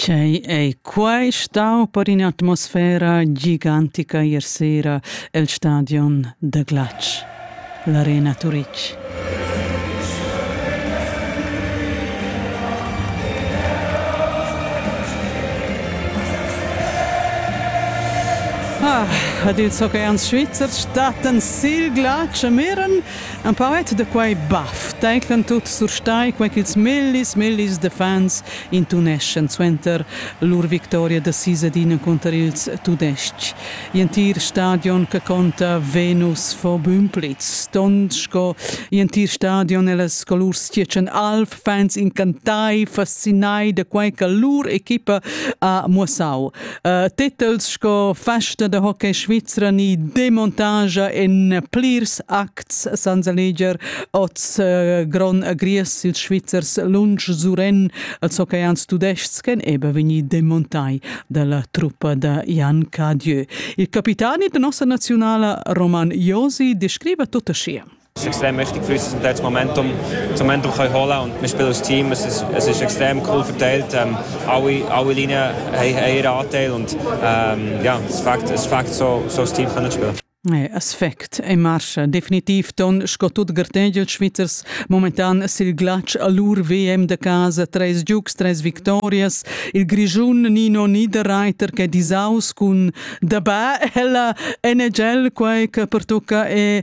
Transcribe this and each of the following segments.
Quei ei quai stau per in'atmosfera gigantica ier sera el stadion da glatsch, l'Arena Turitg. Ah, ad ils hockeyans svizzers stattan sil glatsch a Miren Un poet da quai baff teclan tut surstai quai ch'ils millis millis da fans intuneschan suenter lur victoria da sis ad ina cunter ils Tudestgs. Gl'entir stadion che conta Venus fo bün plitz, stond sco gl'entir stadion e las colurs tgietschen alv fans incantai, fascinai da quei che lur equipa ha muossau. Uh, titels sco Festa da hockey Svizra ni Demontage en plirs acts san seleger oz uh, Gron Agries ils Svizzers lunsch suren als hockeyians tudestgs ch'en ebe vegni demontai dalla truppa da Jan Cadieu. Il capitani da nossa nazionala Roman Josi descriva tutta sia. extrem mächtig für uns in das Momentum, Momentum kann holen und wir spielen als Team. Es ist, es ist extrem cool verteilt. Ähm, alle, alle Linien haben, haben ihren Anteil und ähm, ja, es fängt, es fängt so, so das Team können spielen. Hey, aspect in marcia. Definitiv ton sco tut gartegel Schweizers momentan sil glatsch a lur VM de casa, treis giugs, treis victorias. Il Grischun Nino Niederreiter che disaus cun dabà ella NHL quai che pertucca e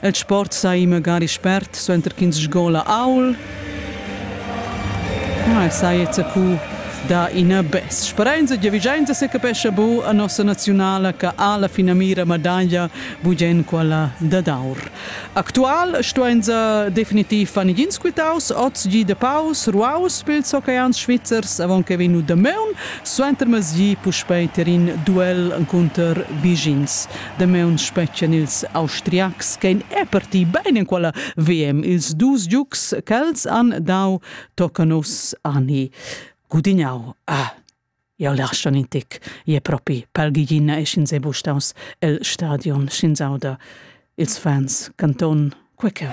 El sport sai magari spert suenter ch'ins sgola aul. Ah, saja zacu da ina bes. Sperenza giavigiainza se capescha bu a nossa naziunala che ha la finamira medaglia bugen quella dad aur. Actual stuenza definitiv fan igins quitaus oz gi de paus ruaus pils hockeans svizzers avon che vegnu Dameun suenter mezgi puspei terin duel cunter Bigins. Damaun spetgan ils Austriacs ch'ein reparti bein enquala VM. Ils dus giugs ch'els han dau tocan uss ani gudignau. Ah, jau lascha in tic, je propi, palgigina e sch'ins è bustaus el stadion, sch'ins auda ils fans canton queceu.